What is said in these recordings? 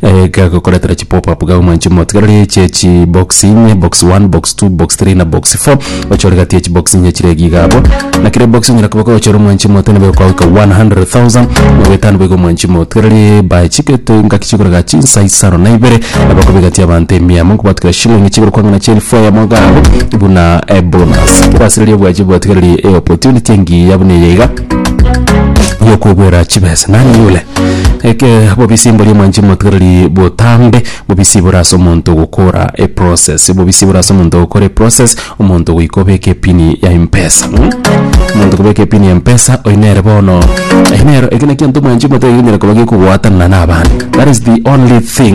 Iga gokoretera chi pop up gaguma inche motigareri chie chi box inye box 1 box 2 box 3 na box 4 ochore gati echi box inye chire iga igabo na kire box onyara koba kochora omwanchi mote na beko kwawika 100,000 na bwetano bego omwanchi motigareri by chike to ngaki chikorega chinsa isano na ibere na bako bigati abanto emia amo nkobatukira shilling chigoro kwangana chie elfu eyemo iga abwo buna bonus kebasireri obwachi botigareri e opportunity engiya buna eye iga. yokogwera chibesa nani yule eke bobisi mbori omwanchi motigareri botambe bobisi bore ase omonto gokora eprocess bobisi bore ase omonto gokora eprocess omonto goika obeke epini ya mpesa mm? omonto kobeka epini ya mpesa oyi nere bono eyi nero eke nekianto omwanchi omotari gikonyara koba gekogwatanana na abande that is the only thing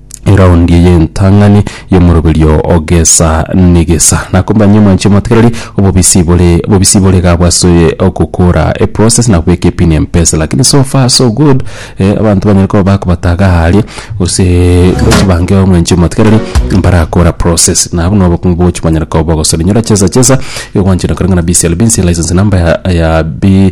eraundi y'entang'ani y'omoroberio o gesa negesa. Nakombanyia omwanche omotigereri obobisi bore obobisi bore iga bwase ogokora eprocess na kobeka epini empesa lakini so far so good eh, abanto banyare koba bakobataga aa aria gose gochi bange omwanche omotigereri mbarakora process na buna obokong'u bogochi banyare koba bogosore inyora chesa chesa igo gwanchete kore ng'a na BCLB nse license number ya ya bi.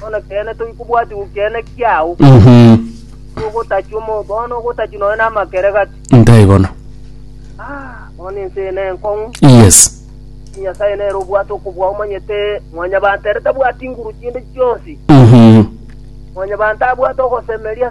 Bono ekeene tobi kobwati gokeene kiao. Mhm. Ogotachwa omo bono ogotachwa noyo na amakere gati. Ntaigono. Ah, bono ense eye nenkong'u. Yes. Nyasaye nere obwate okobua omanyete mwanyabanto ere tabwati nguru chinde chionsi. Mhm. Mwanyabanto abwate ogosemeria